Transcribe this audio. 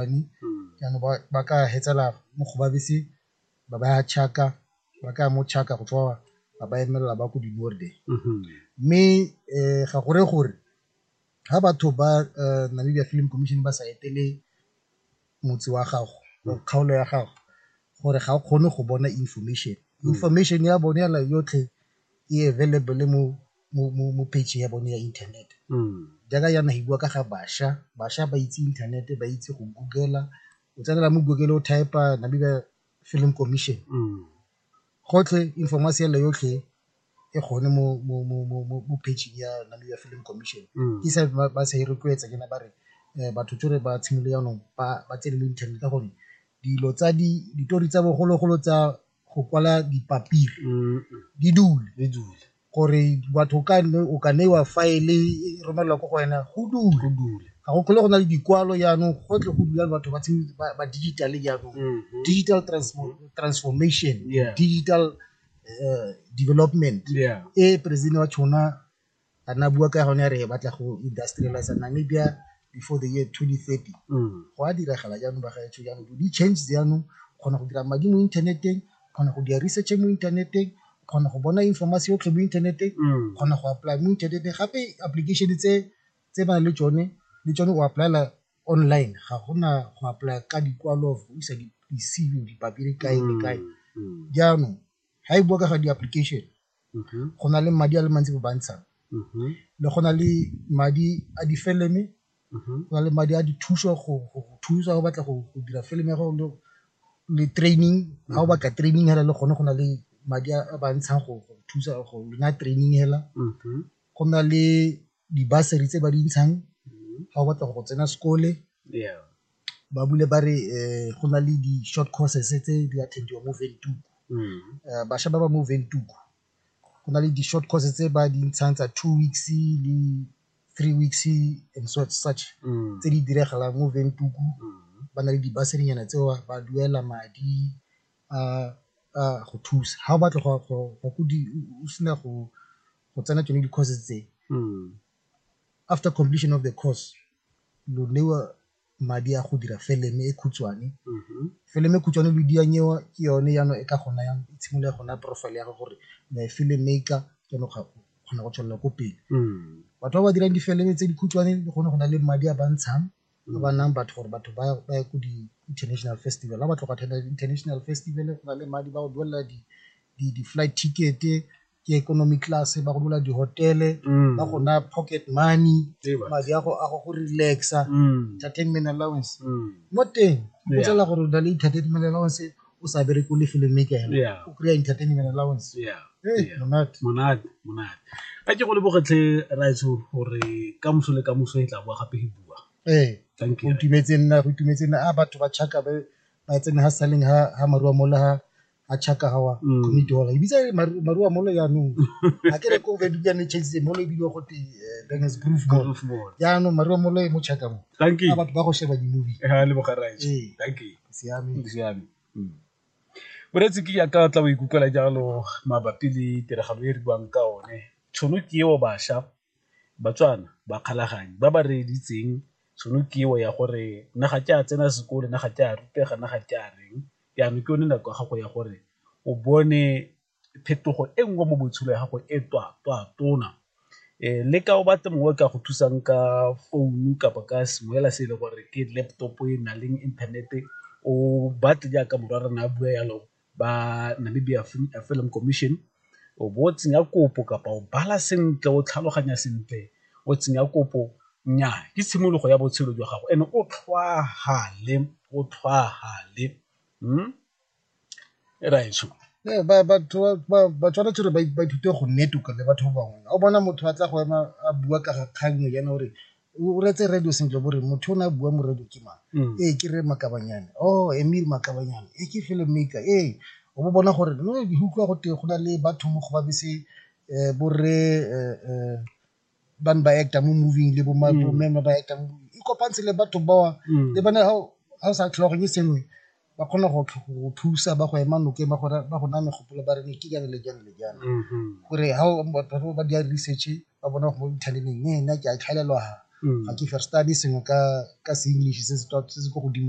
bane jaanong ba ka fetsela mo go babese ba ba ya Chaka ba ka ya mo Chaka go tswa ba ba emelela ba ko di mme um ga gore gore ga batho ba Namibia Film Commission ba sa etele motse wa gago or kgaolo ya gago gore ga o kgone go bona information, information ya bone yotlhe e available mo. mo, mo, mo page ya bone ya inthanete jaaka yana e bua ka ga bašwa bašwa ba itse inthanete ba itse go googela o tsenela mo google o type-a namibia film commission gotlhe information ele yotlhe e gone mo, mo, mo, mo, mo, mo pageng ya namibia film commission ke sa ba ba sa e rotloetsa ke na ba re um batho tsore ba tshimole jaanong ba ba tsene mo internet ka gore dilo tsa di ditori tsa bogologolo tsa go kwala dipapiri di dule di dule gore batho ka nne o ka neiwa file e romelelwa ko go wena go dule ga go tlhole go na le dikwalo jaanong gotlhe go dula batho ba ba digital jaanong mm-hmm. digital transformation digital eh, development e president wa tshona a na bua ka gone re batla go industrialize namibia before the year 2030 mm. go a diragala jaanong ba gaetsho jaanong di change jaanong kgona go dira madi mo inthaneteng kgona go dira research mo inthaneteng kgona go bona informasi yotlhe mo inthaneteng mm. kgona go apply mo inthaneteng gape application tse tse ba le tsone le tsone o applyela online ga gona go apply ka dikwalo go isa di-cv dipampiri kae le kae mm, mm. jaanong ga e bua ka ga di-application go na le madi a le mantsi ba ntshang le go na le madi a difeleme go na le madi a dithuso go thusa go batla go dira film ya gago le training ga o batla training hela le gone go na le madi a ba ntshang go thusa go naya training hela go na le di-bursary tse ba di ntshang ga o batla go tsena sekole ba bule ba re go na le di-short courses tse di attend-iwang mo Windhoek. Bašwa ba ba mo Windhoek go na le di-short courses tse ba di ntshang tsa two weeks le three weeks and such tse di diragalang mo Windhoek, ba na le di-bursary-nyana tseo ba duela madi a go thusa. Ga o batla go ya ko o sena go go tsena tsone di-course tse mm. after completion of the course lo newa madi a go dira feleme e khutshwane mm-hmm. feleme e khutshwane lo dianyewa ke yone yano e ka gona yang e tshimolola gona profile ya gago gore na e feleme e ka keno kgona go tswelela ko pele mm. batho ba ba dirang difeleme tse di khutshwane le gone go na le madi a ba ntshang ba ba nayang batho gore batho ba ye ko di-international festival ga ba tlhoka thata di-international festival go na le madi ba go duelela di-flight ticket-e ke economy class ba go duela di-hotele ba go naya pocket money madi a go go relaxa entertainment allowance mo teng o tsela gore o na le entertainment allowance o sa bereke o le filmmaker Yeah. o kry-a entertainment allowance Yeah. Eh, Yeah. monate monate monate a ke go lebogetlhe raitso gore ka moso le ka moso e tla boa gape e bua ee thank go you itumetse nna go itumetse nna a batho ba chaka ba ba tsene ha saleng ha ha marua mola ha ha chaka hawa Mm. community hall ibitsa e re Maru- marua mola yaanong a ke re ko be dukang ne chase mola e bidiwa gote bangers groove mall Good morning. yaanong marua mola e mo chaka mo thank you a batho ba go sheba di-movie Eh, a leboga raitso Ee. thank you siame boreetsi ke jaaka tla o ikutlwela jalo mabapi le tiragalo e re buang ka one tšhono ke eo bašwa batswana ba kgalaganyo ba ba reeditseng tšhono ke eo ya gore nna ga ke a tsena sekolo, nna ga ke a rutega, nna ga ke a reng jaanong ke yone nako ya gago ya gore o bone phetogo e nngwe mo botshelo ya gago e twa twa tona le ka o batla mongwe o ka go thusang ka founu kapa ka sengwe fela se e le gore ke laptop e na leng inthanete o batle jaaka morwa rona a bua jalo ba Namibia Film Commission o bo o tsenya kopo kapa o bala sentle o tlhaloganya sentle o tsenya kopo, nnyaa ke tshimologo ya botshelo jwa gago and o tlhwaafale o tlhwaafale . ba tshwanetse gore ba ithute go nne tuka le batho ba bangwe, ga o bona motho a tla go ema a bua ka ga kgang e jaana o re o reetse radio sentle bo re motho o ne a bua mo radio ke mang, ee ke Rre Makabanyana, oh Emil Makabanyana, ee ke film maker, ee o bo bona gore no ke utlwa gote go na le batho mo go ba bese bo rre . ba ne ba actor mo moving le bo ma bo mme ba ba actor mo moving e kopantshe le batho ba le bone ha o- ha o sa tlhologanyo e sengwe ba kgona go tlh- go thusa ba go ema nokeng ba go ra- ba go naya megopolo ba re ne ke jang le jang le jang gore ha o- batho ba ba dira research ba bona go mo inthaneteng ne nna ke a tlhaelelwa ha ga ke firstane sengwe ka ka se english se se tswa- se se ko godimo